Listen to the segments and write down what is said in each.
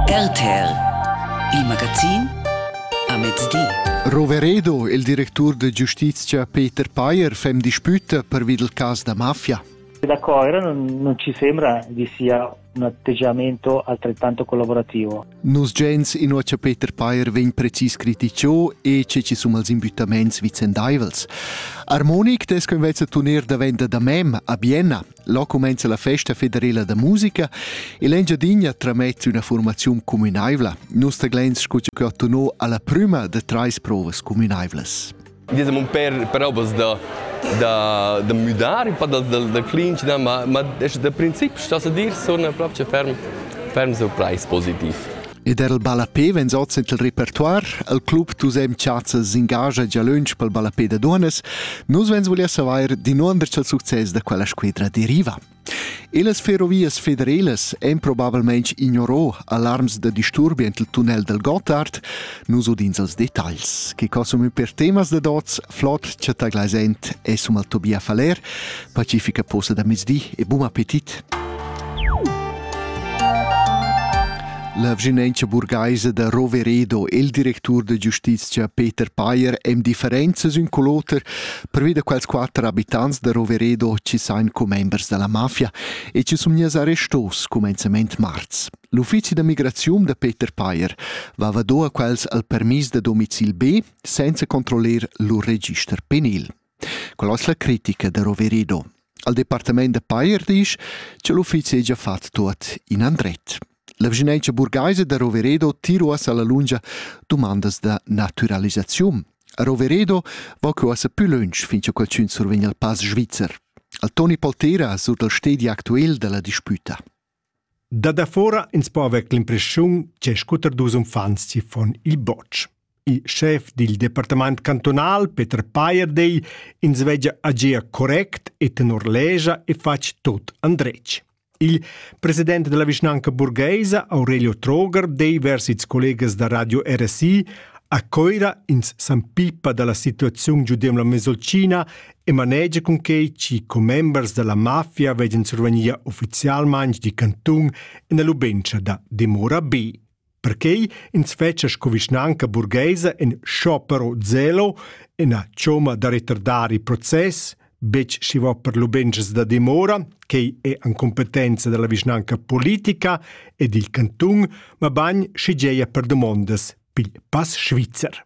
RTL Il magazin a mezdi. Roveredo, il directur de giustizia Peter Payer fem disputa pervi del cas da mafia. Da Coira non, non ci sembra vi sia un atteggiamento altrettanto collaborativo. Nos gens in ocha Peter Payer vegn precis criticio e ce ci sum als imbuttaments vicendaivels. Armonic des convezza tuner da venda da mem a Bienna. Là cumenza la festa federela da musica e l'Engiadinha tramett üna formaziun cumünaivla. Nus taglens scu che ho tunò alla prüma da trais provas cumünaivlas. Diciamo un per, per obas da, da, da müdar, un po da, da, da clinch, no, ma, ma da principi sto sa dir, sun proprio ferm, ferm surprais positiv. Ed er il ballapé vegn oz en il repertoire. Il club Tusem Chazza s'engascha gia lunsch pel ballapé da dunas. Nus vegns volia savair dinunder cha'l success da quella squidra deriva. E las ferrovias federelas èn probabilmente ignorò alarms da disturbi ent il tunnel del Gottard, nus udins els detagls, che consumi per temas da dots, flot chattaglaisent e sum al Tobia Faller, Pacifica posa da mezdi e bun appetit! La vginentscha burgaisa da Roveredo e il directur da giustiziا Peter Payer èn differenzas ün cul oter pervi da quels quatter abitants da Roveredo chi sain commembers da la mafia e chi sun gnats arrestos cumenzament marz. L'uffizi da migraziun da Peter Payer vava do a quels al permis da domicil B senza controllar lur register penil. Quella es la critica da Roverido. Al departamaint da Pajer disch cha l'uffizi hegia fat tuot in andret. La vischinanza burgaisa da Roveredo tira uossa la lungia dumandas da naturalisaziun. A Roveredo va que uossa pü lönch fin cha qualchün survegn al pass svizzer. Al Toni Poltera sur dal stedi actuel da la dispüta. Da dafora ins po haver l'impressiun che scuter dus uffants siffon il botsch. Il schef dil departament cantunal, Peter Payer, dei ins vegia agia correct e tenor legia e fatg tot andretg. Il president della vischnanca burgheisa, Aurelio Troger, dei vers its collegas da radio RSI a Coira ins s'ampippa dalla situaziun giudem la Mesolcina e manegia cunquei chi commembers dalla mafia veggan survegnir ufficialmein di cantun ina lubentscha da dimora bi. Perquei ins fetscha sco vischnanca burgheisa in sciopero zelo, ina cioma da retardari process, betg schi va per lubenschas da dimora, quei è an competenza della vischnanca politica e dil cantun, ma bagn schi geia per domondas pil pass svizzer.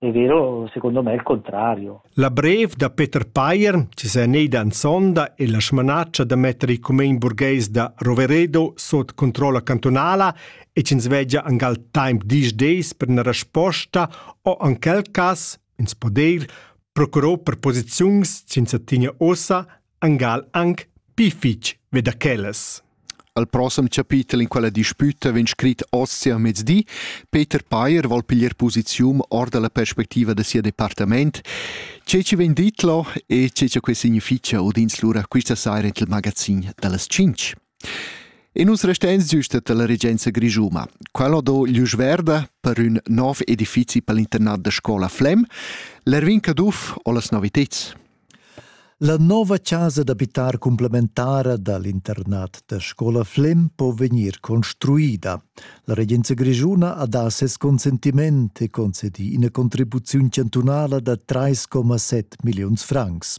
È vero, secondo me è il contrario. La brev da Peter Payer, che sa neida en sonda e la smanaccia da mettere i comuni burghes da Roveredo sot controlla cantonala e ci svegia angal temp dies days per una risposta o in quel cas, ins poder, procurò per posiziuns senza tinia ossa angal anc pli fitg ve da quellas. Al prossem chapitel in quella disputa vegn scrit oz sia mezdi. Peter Payer vuol piglier posizium or dalla perspectiva de sia departament. Che ci vegn dit lo e che ci che significia udins lura questa saira il magazin dallas 5. E nus resteins giust dalla regenza grischuma. Quella ho do glüsch verda per ün nov edifizi pel internat da scola Flem. L'Erwin Caduff ho las noviteds. La nova casa d'abitar complementara dall'internat da scola Flem po vegnir construida. La regenza grischuna ha da ses consentiment e concedi ina contribuziun chantunala da 3,7 milliuns francs.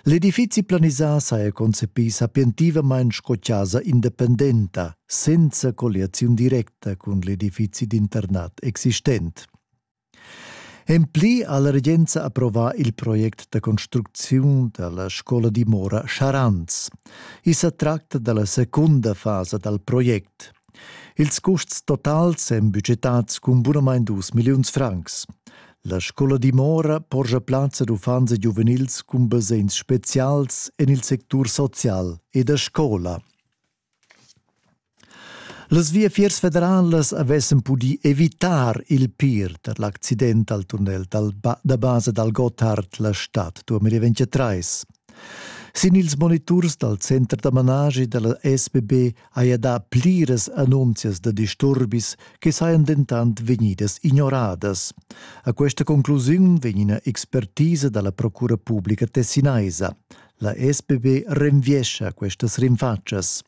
L'edifizi planisà saja concepì sapientivamain sco chasa independenta, senza colliaziun directa cun l'edifizi d'internat existent. En pli ha la regenza approvà il project da construcziun da la scola dimora Charanz. I sa tracta da la secunda fasa dal project. Ils custs totals èn budgetads cun bunamain dus milliuns francs. La scola dimora porscha plazza d'uffants e giuvenils cun basegns spezials en il sectur social e da scola. Las viafiers federalas avessan pudì evitar il pir tar l'accident al tunnel da basa dal Gotthard la stad 2023. Sin ils moniturs dal center da managi da la SBB haja dà pliras annunzias da disturbis che sajan dentant vegnidas ignoradas. A questa conclusiun vegn ina expertisa dalla Procura Publica tessinaisa. La SPB renviescha questas rinfatschas.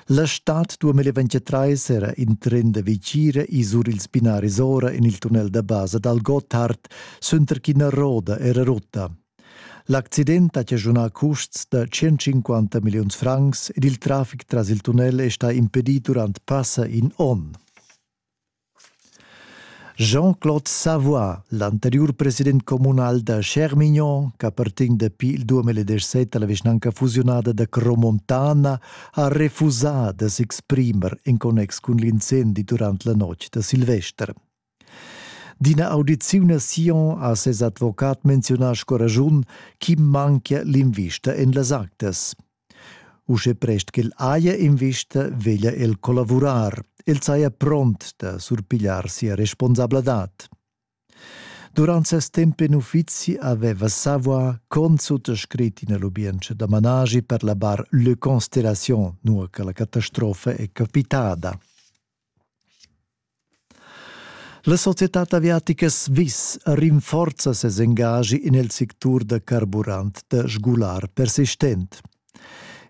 La stad 2023 era in tren da Vicira e sur ils binaris ora en il tunnel da basa dal Gotthard, suenter ch'ina roda era rutta. L'accident ha chaschunà custs da 150 milliuns francs ed il traffic tras il tunnel è stà impedì durant passa in onn. Jean-Claude Savoy, l'anteriur president communal da Schermignon, ch'appartegn dapi il 2017 a la vischnanca fusiunada da Cromontana, ha refusà da s'exprimer en connex cun l'incendi durant la notg da Silvester. D'ina audiziun a Sion ha ses advocat menziunà sco raschun ch'i manchia l'invista en las actas. Uschè prest ch'el haja invista veglia el collavurar. El saja pront da surpigliar sia responsabladad. Durant ses temp en uffizi aveva Savoie consuttascrit ina lubientscha da managi per la bar Le Constellation, nua che la catastrofa è capitada. La societad aviatica Swiss rinforza ses engagi en il sectur da carburant da sgular persistent.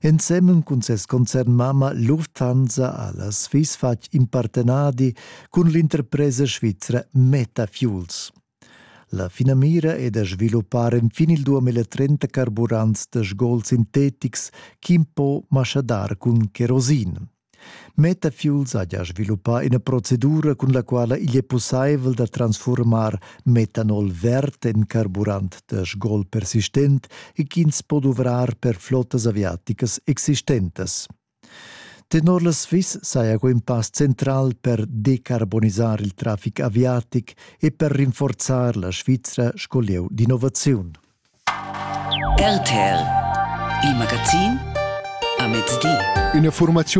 Ensemen cun ses concernmamma Lufthansa ha la Swiss fatg in partenadi cun l'interpresa svizra Metafuels. La finamira è da sviluppar enfin il 2030 carburants da sgols sintetics ch'impo maschadar cun kerosin. Metafuel saja sviluppà ina procedura cun la quala igl è pussaivel da transfurmar metanol verd en carburant da sgol persistent e ch'ins po duvrar per flottas aviaticas existentas. Tenor la Swiss saja quei in pass central per decarbonisar il traffic aviatic e per rinforzar la Svizra sco lieu d'innovaziun. RTL, il magazin a mezdi. Üna furmaziun